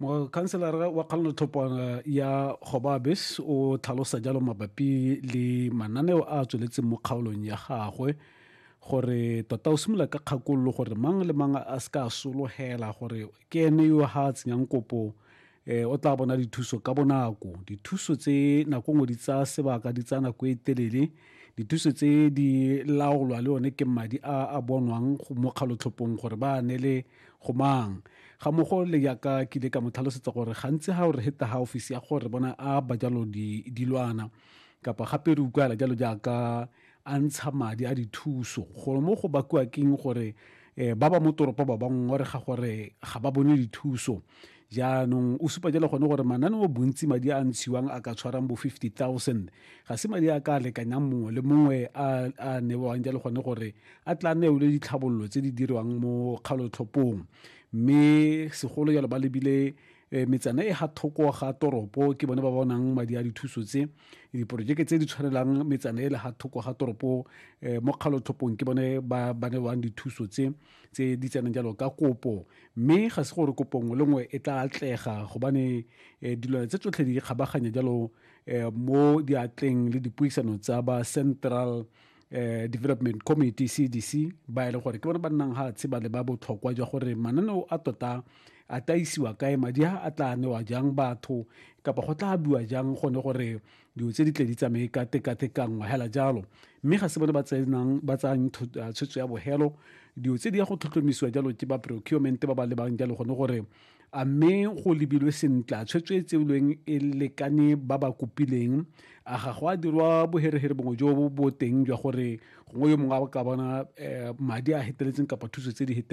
mokhanselara wa kgalanotlhopwana ya gobabes o tlhalosa jalo mabapi le mananeo a a tsweletseng mo kgaolong ya gagwe gore tota o simolola ka kgakololo gore mang le mang a se ka a sologela gore ke ene yo ga a tsenyang kopo eh o tla bona dithuso ka bonako dithuso tse nako ngwe di tsaya sebaka di tsaya nako e telele dithuso tse di laolwa le one ke madi a a bonwang mo kgalotlhopong gore ba ne le Go mang? Ga mogo le yaka ke ile ka mo tlhalosetsa gore gantsi ga o re heta ga ofisi ya gore bona a ba jalo di dilwana kapa gape re utlwala jalo jaaka a ntsha madi a dithuso gore mo go bakiwa keng gore um ba ba mo toropo ba bangwe gore ga gore ga ba bone dithuso Jaanong o supa jalo gone gore mananeo bontsi madi a ntshiwang a ka tshwarang bo 50,000 ga se madi a ka lekanyang mongwe le mongwe a a newang jalo gone gore a tla neole ditlhabololo tse di dirwang mo kgalotlhopong mme segolo jalo ba lebile eh, metsana e ga thoko ga toropo ke bone ba bonang madi a dithuso tse diporojeke tse di tshwanelang metsana e le ga thoko ga toropo eh, mo kgalotlhopong ke bone ba ba newang dithuso tse tse di tsenang jalo ka kopo mme ga se gore kopo nngwe le nngwe e tla atlega gobane um dilwana tse tsotlhe di kgabaganya jalo um mo diatleng le dipuisano tsa ba central um development committee cdc ba e leng gore ke bone ba nnang ga tsheba le ba botlhokwa jwa gore mananeo a tota a taisiwa kae madi a a tla newa jang batho kapa go tla biwa jang gone gore dilo tse di tle di tsamaye ka tekatekanngwa hela jalo mme ga se bone ba tsenang ba tsayang ah, tshwetso ya bogelo dilo tse di ya go tlhotlhomisiwa jalo ke ba procurement ba ba lebang jalo gone gore a mme go lebilwe sentle a tshwetso e tseolweng e lekane ba ba kopileng a ga go a dirwa boherehere bongwe jo bo teng jwa gore gongwe yo mongwe a ka bona eh, madi a heteletseng kapa thuso tse di heteletseng